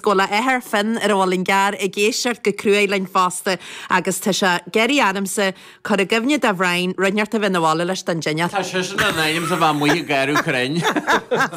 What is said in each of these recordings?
Bhuail a athair, Finn, ar a bhfuil an gear ag éisteacht go cruaidh linn fosta, agus tá sé ag iarraidh ormsa cur i gcuimhne do Bhrian rud inteacht a bheith 'na bhaile leis don dinnéar. Tá seisean in ainm 's a bheith amuigh ag gearradh crainn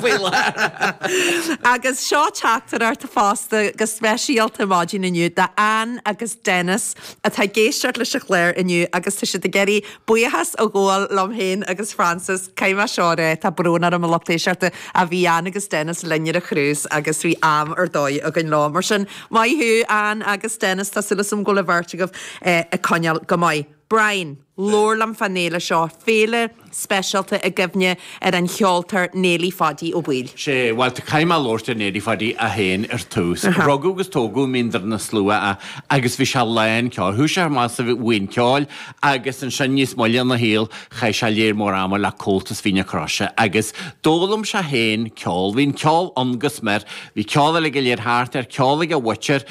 faoi láthair. Agus seo teachtaireacht fosta go speisialta maidin inniu, do Anne agus Dennis, atá ag éisteacht leis an chlár inniu, agus tá siad ag iarraidh buíochas a ghabháil liom féin agus Frances, caithfidh mé seo a rá, tá brón orm a lucht éisteachta, a bhí Anne agus Dennis linn ar an chrús agus bhí am ar dóigh againn leo. Mar sin, maith thú Anne agus Dennis, tá súil agam go bhfuil an bheirt agaibh ag coinneáil go maith. Brian, labhair liom fán fhéile seo, féile speisialta i gcuimhne ar an cheoltóir Néilí Phaidí Ó Baoill. Sea, bhuel, tá, caithfidh mé labhairt ar Néilí Phaidí é féin ar tús. Rugadh agus tógadh i Mín Doire na Slua é agus bhí sé lán ceoil. Thugadh sé thar moladh sa bhuíon ceoil agus ansin níos moille ina shaol chaith sé lear mór ama le Comhaltas Mhín na Croise agus d'fhoghlaim sé féin ceol. Bhí an ceol ann go smior, bhí ceol uilig go léir thart air, ceol ag a mhuintir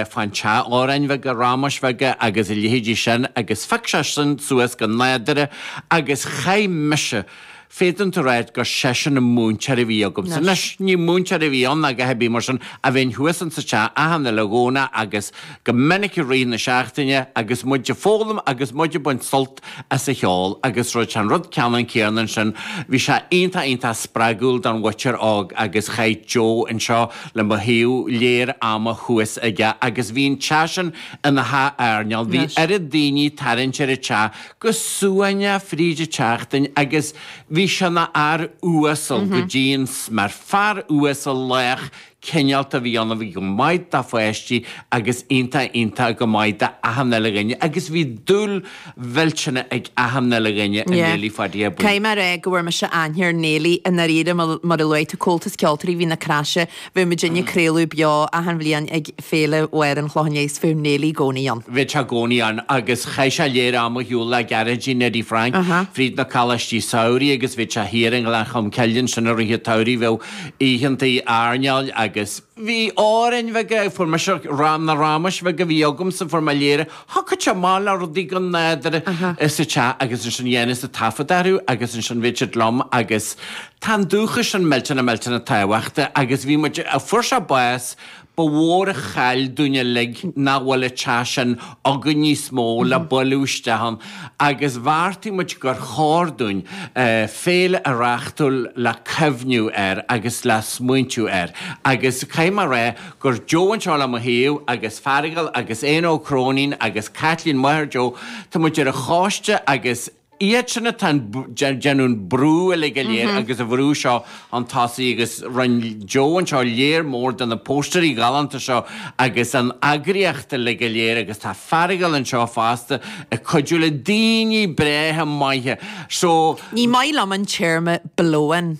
fán teach, amhráin bheaga, ramáis bheaga agus a leithéidí sin agus phioc sé sin suas go nádúrtha agus chaith mise Féadann tú ráidht gur seisean an múinteoir a bhí agamsa. Anois, ní múinteoir a bhí ann ná go haibí mar sin ach bhínn thuas insa teach achan uile Dhomhnach agus go minic i rith na seachtaine agus muid a' foghlaim agus muid a' baint sult as a cheol agus rud sé an rud ceannann céarna ansin bhí sé iontach iontach spreagúil don mhuintir óg agus chaith Joe anseo le mo thaobh lear ama thuas aige agus bhí an teach sin ina theach airneáil, bhí oiread daoiní tarraingt ar an teach go suaimhneach fríd a' tseachtain agus bhí sé 'na fhear uasal go dtí an smior, fear uasal, lách, cineálta, bhí iontach, bhí go maith dá pháistí agus iontach, iontach go maith do achan uile dhuine agus bhí dúil mhillteanach ag achan uile dhuine i Néilí Phaidí Ó Baoill. Cé mar ea go bhfuair mise aithne ar Néilí i ndáiríre mar a luaigh tú, Comhaltas Ceoltóirí Mhín na Croise, Bhí muid ag craoladh beo achan bhliain ag Féile Mháire an Chlocháin agus bheadh Néilí i gcónaí ann. Bheadh sé i gcónaí ann agus chaith sé lear ama ar shiúl le Gearóidín Neidí Frainc fríd na coláistí samhraidh agus bhíodh sé thiar i nGleann Cholm Cille ansin i rith an tsamhraidh, bheadh oícheanta airneáil agus. Bhí amhráin bheaga, fuair mise, na rámais bheaga a bhí agamsa, fuair mé lear Thiocfadh sé amach le rudaí go nádúrtha sa teach agus ansin dhéanfainnse taifead orthu agus ansin bheadh siad liom agus tá an dúchas sin millteanach millteanach tábhachtach agus bhí muid, fuair sé bás, ba mhór an chaill dúinn uilig nach bhfuil an teach sin againn níos mó le bailiú isteach ann agus bheartaigh muid gur chóir dúinn féile a reáchtáil le cuimhniú air agus le smaointiú air agus caithfidh mé a rá gur Joe anseo le mo thaobh, agus Fearghal agus Éanna Ó Cróinín agus Caitlín máthair Joe, tá muid ar an choiste agus iad sin atá ag déanamh an brú uilig go léir agus á bhrú seo chun tosaigh agus rinne Joe anseo léar mór de na póstaeirí galánta seo agus an eagraíocht uilig go léir agus tá Fearghal anseo fosta ag cuidiú le daoine breátha maithe so. Ní maith liom an téarma blow in.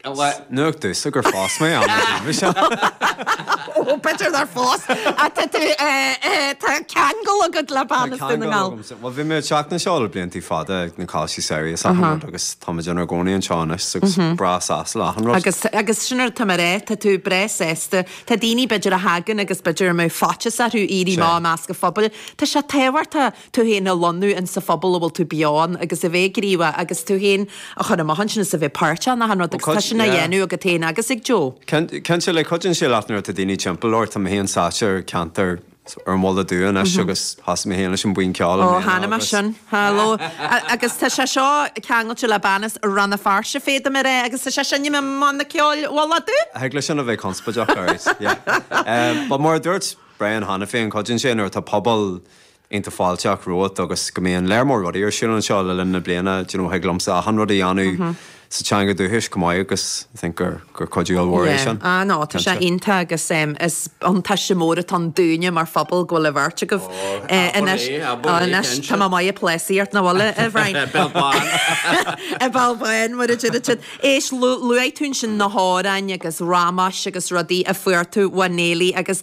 Nuacht domhsa gur fás mé am na bliana seo. Ó, b'fhéidir nár fás atá tú, tá ceangal agat le bean as Dún na nGall. Bhuel bhí mé ag teacht anseo le bliantaí fada ag na cúrsaí samhraidh is achan rud agus tá muid inár gcónaí anseo anois agus breá sásta le achan rud. Agus sin rud atá mé a rá, tá tú breá sásta, tá daoine b'fhéidir a thagann agus b'fhéidir go mbeadh faitíos orthu éirí amach i measc an phobail, tá sé tábhachtach tú féin a lonnú in sa phobal a bhfuil tú beo ann agus a bheith gníomhach agus tú féin a chur amach ansin is a bheith páirteach in achan rud agus tá sin á dhéanamh agat féin agus ag Joe. Cinnte le cuideann sé leat nuair atá daoine timpeall ort, tá mé féin sáite ar ceantar ar an Mhullach Dubh anois agus thosaigh mé féin leis an buíon ceoil i mbliana agus. Ó chonaic mé sin. Hello. Agus tá sé seo ceangailte le bean as Rann na Feirste féadaim a rá agus tá sé sin i mBanna Ceoil Mhullach Dubh. Thig leis sin a bheith conspóideach, alright, yeah. But mar a dúirt Brian cheana féin, cuideann sé nuair atá pobal, iontach fáilteach romhat agus go mbíonn léar mór rudaí ar siúl anseo le linn na bliana, d'you know, thig liomsa achan rud a dhéanamh sa teanga dúchais chomh maith agus I think gur, gur cuidiú ollmhór é sin. Yeah, ah no, tá sé iontach agus em, is buntáiste mór atá ann dúinne mar phobal go bhfuil an bheirt agaibh eh anois, ah anois tá mé maith ag plásaíocht nach bhfuil a a Bhrian? Béal bán! An béal bán mar a deir siad. Éist, lu luaigh tú ansin na hamhráin agus ramáis agus rudaí a fuair tú ó Neilí agus